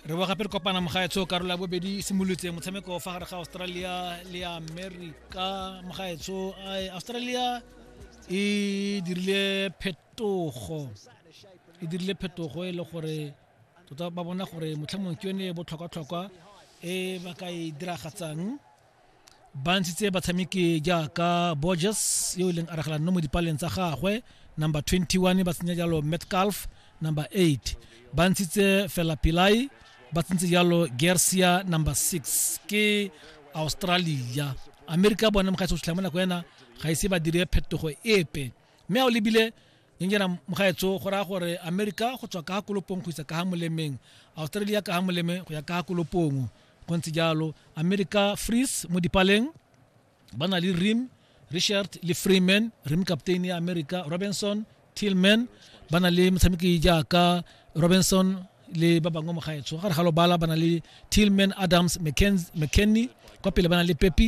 re bo gape re kopana mogaetsho karolo ya bobedi e simolotse motshameko fa gare ga australia le america mogaetsho australia e dirile phetogo e dirile phetogo e le gore tota ba bona gore motlhamong ke yone e botlhokwa-tlhokwa e ba ka e diragatsang ba ntshitse batshameki jaaka borges yo e leng aragelanno mo dipaleng tsa gagwe number 21 ba tsenya jalo metcalf number 8 ba ntshitse fela pilai ba tsentse jalo gersia number 6 ke australia amerika bone mogaetso o tlhela mo nako ena ga ise ba dire phetogo epe mme a o lebile nyana mogaetso go raya gore amerika go tswa ka kolopong go isa ka ga molemeng australia ka ga moleme go ya ka kolopong go ntse jalo america frees mo dipaleng ba na le rim richard le freeman rim captain ya america robinson tillman ba na le motshameki jaaka robinson le ba bangwe mo gaetsho gare ga lobala ba na le tillman adams mckenny kwa pele ba na le pepi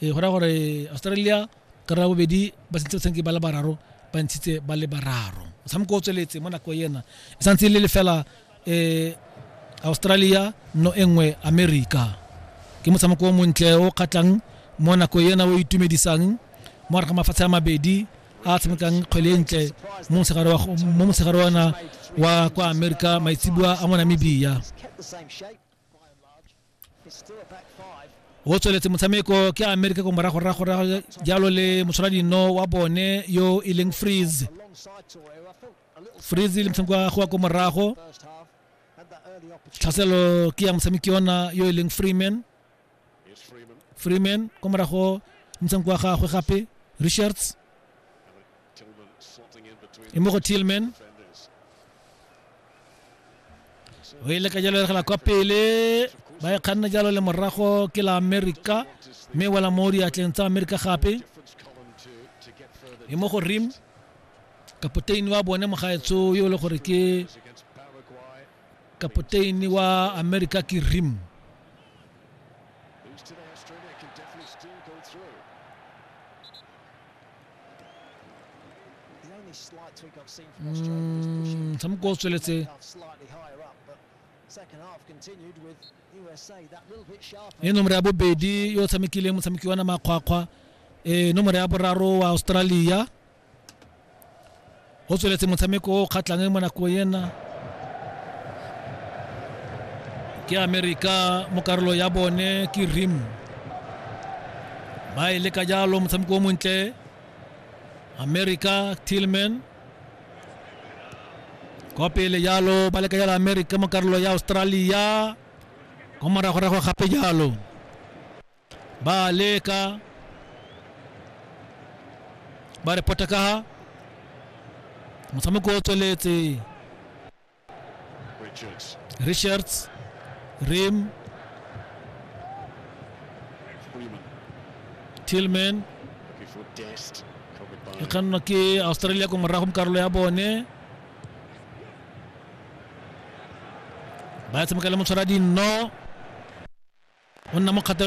e go raya gore australia ka raya bobedi ba sentse batshameki ba le bararo ba ntshitse ba le bararo motshameko o tsweletse mo nako ena e santse e le lefela um australia no e nngwe america ke motshameko o montle o kgatlhang mo nako ena o itumedisang mo gare ga mafatshe a mabedi a tshamekang kgwele e ntle mo mosegare ona wa kwa america maitsibua a mo namibia o tsweletse motshameko ke amerika ko morago rago ra jalo le moshwaradino wa bone yo e leng freeze freeze le motshameko wa goa ko morago tlhaselo ke ya motshameki yona yo e leng freeman freeman kwa morago ntshang kwa gagwe gape richards e mo go tillman o e leka jalo eregela kwa pele ba e kganna jalo le morago ke la america mme wela mo diatleng tsa america gape e mo go rim kapoteni wa bone mogaetso yo e le gore ke Kapoteini wa Amerika ke Rim. Motshameko mm, o tsweletse e nomoro ya bobedi yo o tshamekileng motshameki wa na makgwakgwa e nomoro ya boraro wa Australia go tsweletse motshameko o kgatlhang mo nako ena ke amerika mo karolo ya bone ke rim ba e leka jalo motshameko o montle amerika tillman kwa pele jalo ba leka jalo amerika mo karolo ya australia kwa moragorago gape jalo ba a leka ba re pota kaga motshameko o tsweletse Richards. richards rim Freeman. tillman Looking for Dest. Covered by e kgannwa ke australia ko morago mo karolo ya bone ba tshameka le motshwara dinno o nna mo kgatelo